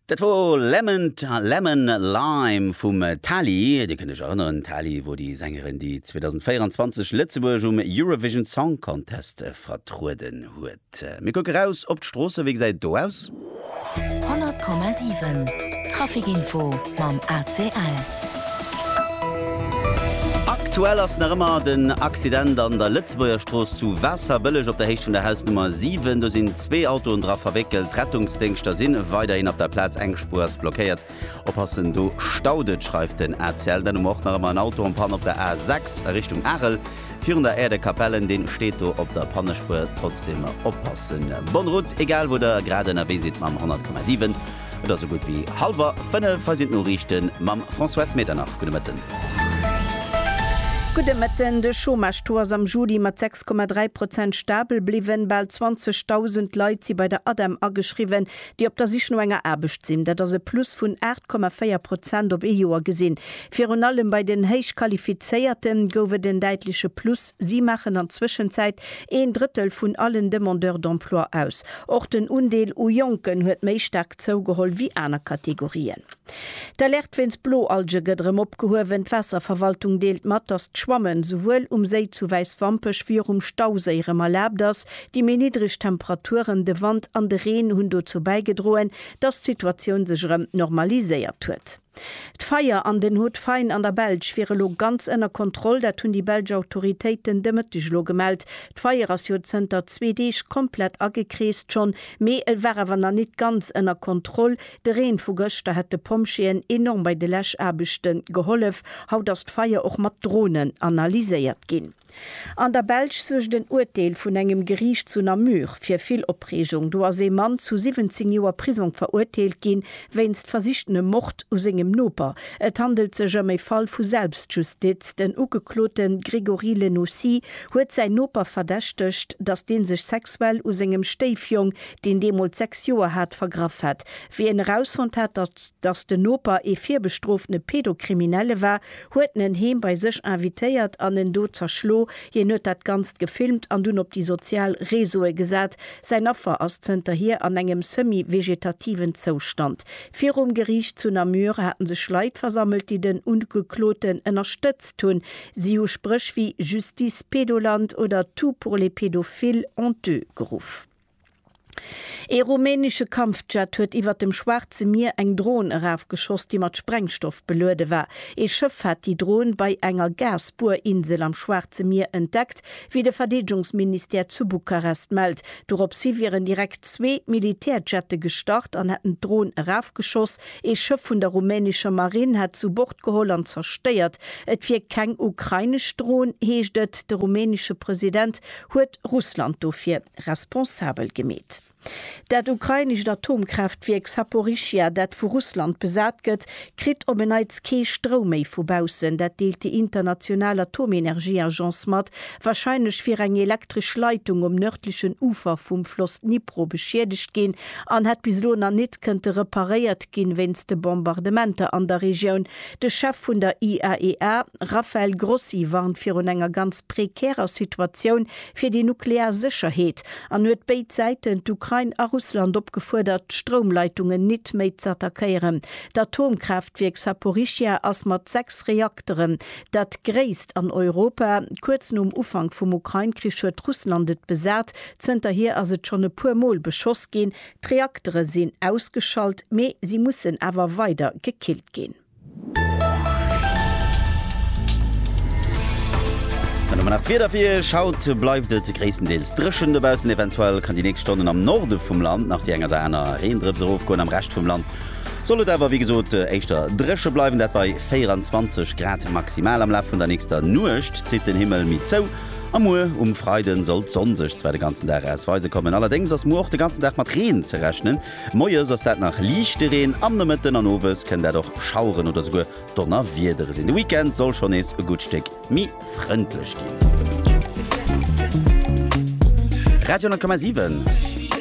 Dat wor Lemon Lemon Lime vum Tali. Dir kënnt iech erënneren, Tali wor déi Sängerin, déi 2024 Lëtzebuerg um Eurovision Song Contest vertrueden huet. Mir kucke raus op d'Stroosse, wéi gesäit et do aus? 100,7 Traffic Info mam ACL. Aktuell ass nach ëmmer den Accident an der Lëtzebuerger Strooss zu Waasserbëlleg op der Héicht vun der Hausnummer 7. Do sinn zwee Autoen dra verwéckelt. D'Rettungsdéngschter si weiderhin op der Plaz. Eng Spuer ass blockéiert. Oppassen, do staut et, schreift den ACL. Dann hu mer och nach ëmmer en Auto en Panne op der A 6 a Richtung Arel, virun der Aire de Capellen. Dee steet do op der Pannespuer. Trotzdem oppassen. Bonne route, egal wou der grad ënnerwee sidd mam 100,7. Et ass sou gutt wéi halwer 5, hei sinn d'Noriichten mam Françoise Medernach. Gudde Mëtten. Gudde Mëtten. De Chômage-Taux ass am Juli mat 6,3 Prozent stabel bliwwen. Bal 20.000 Leit si bei der ADEM ageschriwwen, déi op der Sich no enger Aarbecht sinn. Dat ass e Plus vun 8,4 Prozent op ee Joer gesinn. Virun allem bei den Héichqualifizéierte gouf et en däitleche Plus. Si maachen an Zwëschenzäit een Drëttel vun allen Demandeurs d'emploi aus. Och den Undeel u Jonken huet méi staark zougeholl wéi aner Kategorien. D'Alerte wéinst Bloalge gëtt erëm opgehuewen. D'Waasserverwaltung deelt mat, datt d'Schwammen souwuel um Séi zu Wäiswampech wéi och um Stauséi erëm erlaabt ass. Déi méi niddreg Temperaturen, de Wand an de Reen hunn dozou bäigedroen, datt d'Situatioun sech erëm normaliséiert huet. D'Feier an den Haut Fain an der Belsch wier elo ganz ënner Kontroll. Dat hunn déi belsch Autoritéiten de Mëtteg elo gemellt. D'Feier ass jo zënter zwee Deeg komplett agekreest schonn, mee et war awer nach nit ganz ënner Kontroll. De Reen vu gëschter hätt de Pompjeeën enorm bei de Läschaarbechte gehollef. Haut ass d'Feier och mat Dronen analyséiert ginn. An der Belsch suergt en Urteel vun engem Geriicht zu Namur fir vill Opreegung. Do ass ee Mann zu 17 Joer Prisong verurteelt ginn, wéinst versichtenem Mord u sengem Noper. Et handelt sech ëm e Fall vu Selbstjustiz. Den Ugeklote Grégory Lenocy huet säin Noper verdächtegt, datt dee sech sexuell u sengem Stéifjong, deen deemools 6 Joer hat, vergraff hätt. Wéi en erausfonnt hat, datt den Noper ee virbestrofene Pedo-Kriminelle war, huet en heem bei sech invitéiert an en do zerschlo, hien huet dat Ganzt gefilmt an dunn op déi sozial Reseaue gesat. Säin Affer ass zënterhier an engem semi-vegetativen Zoustand. Virum Geriicht zu Namur hate sech Leit versammelt, déi den Ugekloten ënnerstëtzt hunn. Si hu Spréch wéi Justice Pedoland oder Tout pour les pédophiles honteux geruff. Ee rumänesche Kampfjet huet iwwert dem Schwaarze Mier eng Dron erafgeschoss, déi mat Sprengstoff beluede war. Ee Schëff hat déi Dron bei enger Gas-Buerinsel am Schwaarze Mier entdeckt, wéi de Verdeedegungsministère zu Bukarest mellt. Doropshi wieren direkt zwee Militärjette gestart an hätten d'Dron erafgeschoss. Ee Schëff vun der rumänescher Marinn hätt se u Bord geholl an zerstéiert. Et wier keng ukrainesch Dron, heescht et. De rumänesche President huet Russland dofir. responsabel gemeet. Dat ukrainescht Atomkraaftwierk Saporischschja, dat vu Russland besat gëtt, kritt op en Neits kee Stroum méi vu baussen. Dat deelt déi international Atomenergieagence mat. Warscheinlech wier eng elektresch Leitung um nërdlechen Ufer vum Floss Dnipro beschiedegt ginn an hätt bis elo nach nit kënnte reparéiert ginn, wéinst de Bombardementer an der Regioun. De Chef vun der IAEA, Rafael Grossi, warnt virun enger ganz prekärer Situatioun, fir déi nuklear Sécherheet an huet béid Säiten, d'Ukrain a Russland, opgefuerdert, d'Stroumleitungen nit méi z'attackéieren. D'Atomkraaftwierk Saporischschja ass mat sechs Reakteren dat gréisst an Europa. Kuerz nom Ufank vum Ukrain-Krich huet Russland et besat. Zënterhier ass et schonn e puer Mol beschoss ginn. D'Reaktere sinn ausgeschalt, mee si mussen awer weider gekillt ginn. An domat nach d'Wieder fir Iech. Haut bleift et gréisstendeels dréchen dobaussen, eventuell kann déi nächst Stonnen am Norde vum Land nach déi eng oder aner Reendrëps erofgoen. Am Rescht vum Land soll et awer wéi gesot éischter dréche bleiwen, dat bei 24 Grad maximal. Am Laf vun der nächster Nuecht zitt den Himmel méi zou a muer um Freiden soll d'Sonn sech zwar de ganzen Dag aus weise kommen. Allerdéngs ass muer och de ganzen Dag mat Reen ze rechnen. Moies ass dat nach liichte Reen, am Nomëtten an owes kënnt dat och Schaueren oder souguer Donnerwiedere sinn. De Weekend soll schonn nees e gutt Stéck méi frëndlech ginn. Radio 10,7.